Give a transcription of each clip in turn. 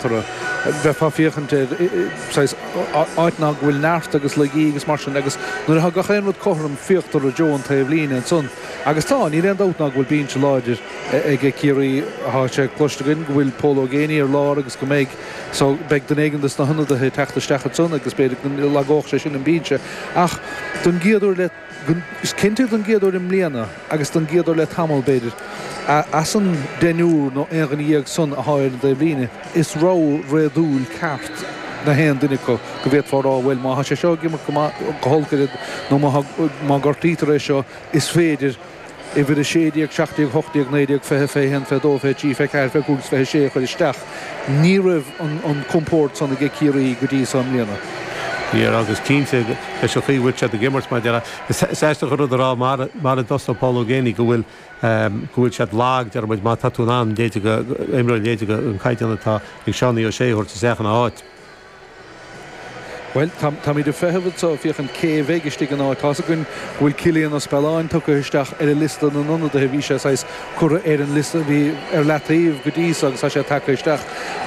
toradh. Bheifeá féachaint ar, saghas, áiteanna go bhfuil neart agus laigí agus mar sin agus nuair atá gach aon rud cothrom féachtar i dtreo an taobh líne ansan agus tá, níl aon dabht ná go bhfuil bínse láidir aige Ciarraí. Tá sé cloiste againn go bhfuil Pól Ó Géibheannaigh ar lár agus go mbeidh, so, beidh duine éigin de sna hionadaithe ag teacht isteach ansan agus b'fhéidir go lagódh sé sin an bínse ach don gcéad uair le Is cinnte don gcéad uair i mbliana, agus don gcéad uair le tamall b'fhéidir, as an deichniúr nó aon dhuine dhéag san atá ar an dtaobhlíne, is rogha réadúil ceart nach aon duine acu go bhféadfá a rá, bhuel, má tá sé seo ag imirt go maith, go holc abair, nó má gortaítear é seo, is féidir. uimhir 16, 17, 18, 19, 20, 21, 22, 23, 24, 25 agus 26 a chur isteach. Ní raibh an compórd san age Ciarraí go dtí so i mbliana. Ní raibh agus cinnte leis an chaoi a bhfuil siad ag imirt mar a déarfá is aisteach an rud a rá maidir le Paul Geaney go bhfuil go bhfuil siad lag dar ndóigh má tá tú in ann leithéide imreoir leithéide an caighdeán atá ag Seánie O Sé a thabhairt isteach ina áit. Bhuel, táimíd ag feitheamh anso féachaint cé a bheidh istigh ina áit. Tá's againn go bhfuil Cillian Ó Spealáin tugtha isteach ar an liosta na n-ionadaithe. Bhí sé saghas curtha ar an liosta, bhí ar leataobh go dtí so agus tá sé tagtha isteach.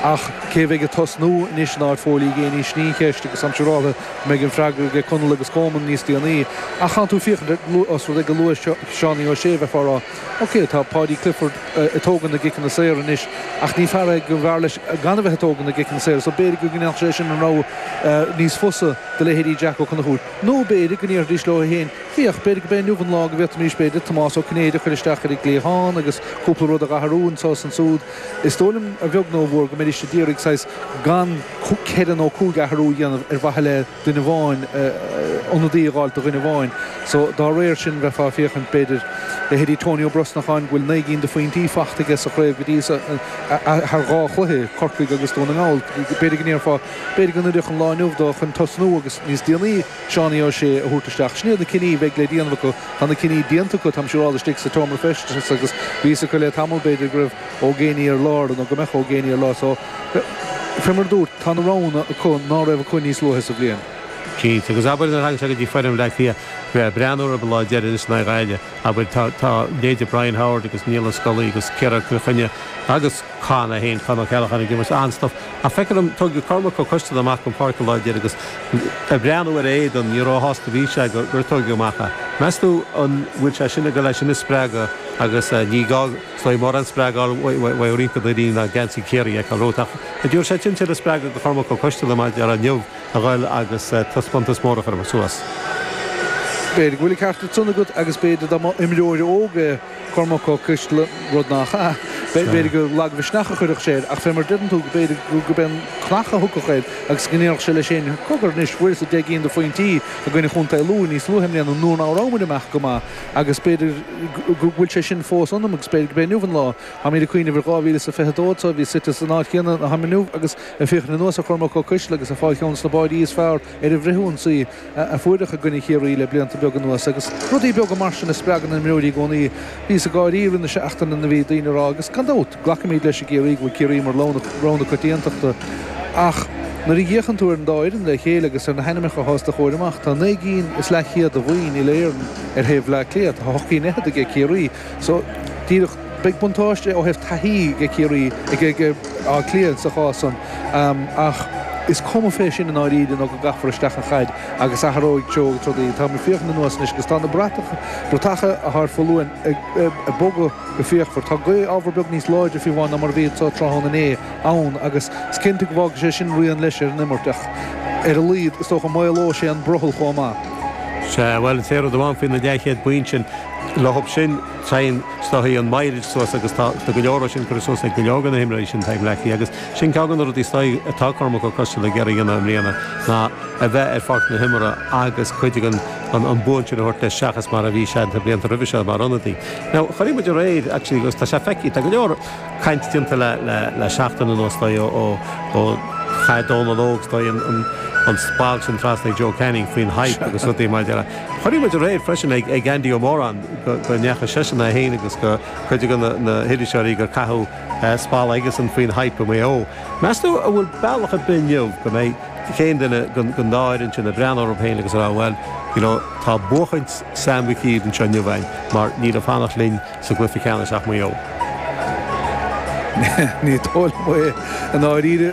Ach cé a bheidh ag tosnú anois in áit Phóil Uí Ghéibheannaigh sin í an cheist agus táim siúráltha go mbeidh an freagra aige Conall agus Colmán níos déanaí. Ach tánn tú ag féachaint ar, os rud é gur luadh Seánie Ó Sé a bheifeá a rá, OK, tá Paudie Clifford ag tógaint na gciceanna saora anois ach ní fear é gur bhfearr leis gan a bheith ag tógaint na gciceanna saora so b'fhéidir go ndéanfadh sé sin an rogha níos fusa do leithéidí Jack Ó Conchúir. Nó b'fhéidir go ndéarfaidís leo féin, féach, b'fhéidir go b'é inniu an lá go bhféadfaimís, b'fhéidir, Tomás Ó Cinnéide a chur isteach ar an gcliathán agus cúpla rud a dh'athrú anseo is ansúd. Is dóigh liom a bheag nó a mhór go mbeidís a d'iarraidh saghas gan ceithre nó cúig d'athrú a dhéanamh ar mhaithe le duine amháin, ionadaí a dh'fháilt do dhuine amháin. So dá réir sin bheifeá ag féachaint, b'fhéidir, leithéidí Tony Ó Brosnacháin go bhfuil naoi gcinn de phointí faighte aige sa chraobh go dtí so, thar dhá chluiche, Corcaigh agus Dún na nGall. B'fhéidir go ndéarfá, b'fhéidir go n-oirfeadh an lá inniu dó chun tosnú agus níos déanaí Seánie Ó Sé a thabhairt isteach. Sin iad na cinní bheidh le déanamh acu. Tá na cinní déanta acu, táimse ag rá, istigh sa tseomra feistis agus bhí a fhios acu le tamall, b'fhéidir go raibh. Ó Géibheannaigh ar lár, nó go mbeadh Ó Géibheannaigh ar lár so. Fé mar a dúrt, tá na roghanna acu ná raibh acu níos luaithe sa bhliain. Cinnte. Agus abair nuair thagann sé go dtí foireann Bhleá Cliath, bheith ag breathnú orthu an lá deiridh anois in aghaidh Ghaillimh, abair, tá, tá, leithéide Brian Howard agus Niall Ó Scolaí agus Ciarán Chill Chainnigh agus Con é féin, Con Ó Ceallacháin ag imirt an-stuif. Ach feictear liom, tóigeadh Cormac Ó Coisteala amach den pháirc an lá deiridh agus ag breathnú ar a éadan, ní ró-shásta a bhí sé gur tóigeadh amach é. Meas tú an bhfuil sé sin ag dul leis sin a spreagadh agus ní gá. Is mór an spreagadh bhfodhraítear na rí ná geansaí Chiarraí ag a rud ach a d'fhill sé cinnte le spreagadh do Cormac Ó Coisteala maidir le inniu a dhul agus taispeántas mór a chur suas. B'fhéidir go bhfuil ceart ag san agat agus b'fhéidir dá mba imreoir óg é Cormac Ó Coisteala, rud nach ea, b'fhéidir gur lagmhisneach a chuirfeadh sé air ach fé mar deireann tú go b'fhéidir go b'fhéidir cnach a thiocfadh air agus go ndéarfadh sé leis fhéin Cogar anois fuaireas-sa deich gcinn de phointí i gcoinne Chontae Lú níos luaithe i mbliana nuair ná rabhamar amach go maith Agus b'fhéidir go bhfuil sé sin fós ionam agus b'fhéidir gurb é inniu an lá. Táimíd ag cuimhneamh ar 2022 agus bhíos suite san áit chéanna ina táim inniu agus ag féachaint anuas ar Chormac Ó Coisteala agus ag fáil cheann desna báidí is fearr ar an bhfrith-ionsaí a fuaireadh i gcoinne Chiarraí le blianta beaga anuas agus rudaí beaga mar sin a spreagann imreoirí i gcónaí. Bhíos ag gáirí le linn na seachtaine nuair a bhí daoine ag rá, agus gan dabht, Glacaimíd leis i gCiarraí go bhfuil Ciarraí mar rogha na coitiantachta. Ach nuair a fhéachann tú ar an dá fhoireann le chéile agus ar na hainmeacha atá os do chomhair amach, tá naoi gcinn is leathchéad de bhoinn Uile-Éireann ar thaobh Bhleá Cliath, tá ocht gcinn fhichead aige Ciarraí. So, díreach, beidh buntáiste ó thaobh taithí aige Ciarraí, aige Áth Cliath sa chás san. Ach is cuma fé sin i ndáiríre nó go gcaithfear isteach an chaid agus athróidh treo rudaí. Táim ag féachaint anuas anois agus tá na bratacha atá ar foluain ag bogadh. go fíochmhar. Tá gaoth ábhar beag níos láidre fé bhun ná mar a bhí sa tráthnóna inné ann agus is cinnte go bhfágfaidh sé sin rian leis ar an imirt ach ar a laghad is dócha maolóidh sé an brothall chomh maith. Sea, bhuel is é rud amháin faoi na leathchéad bonn sin, le hup sin téann is dóichí an mileage suas agus tá tá go leor de sin curtha suas ag go leor de na himreoirí sin atá ag Bleá Cliath agus sin ceann de na rudaí is dóichí atá Cormac Ó Coisteala ag iarraidh a dhéanamh i mbliana ná a bheith ar pháirc na himeartha agus cuid de na boinn sin a thabhairt leis seachas mar a bhí sé na blianta roimhe seo mar ionadaí. Now, chonaic muid aréir, actually, agus tá sé feicthe, tá go leor caint déanta le seachtain anuas, is dóigh, ó chaith Dónal Óg, is dóigh, an splanc sin trasna ag Joe Canning faoin Hype agus rudaí mar é. Chonaic muid aréir freisin ag Andy Ó Móráin go ndeachaigh seisean é féin agus cuid de na hiriseoirí gur caitheadh spalla aigesean faoin Hype i Maigh Eo. Meas tú an bhfuil bealach ar bith inniu go mbeidh. aon duine den dá fhoireann sin ag breathnú orthu féin agus a rá bhuel you know tá buachaint Sam Mhig Uidhir anseo inniu againn mar níl ag fanacht linn sa gcluiche ceannais ach Maigh Eo. Ní dóigh liom é i ndáiríre.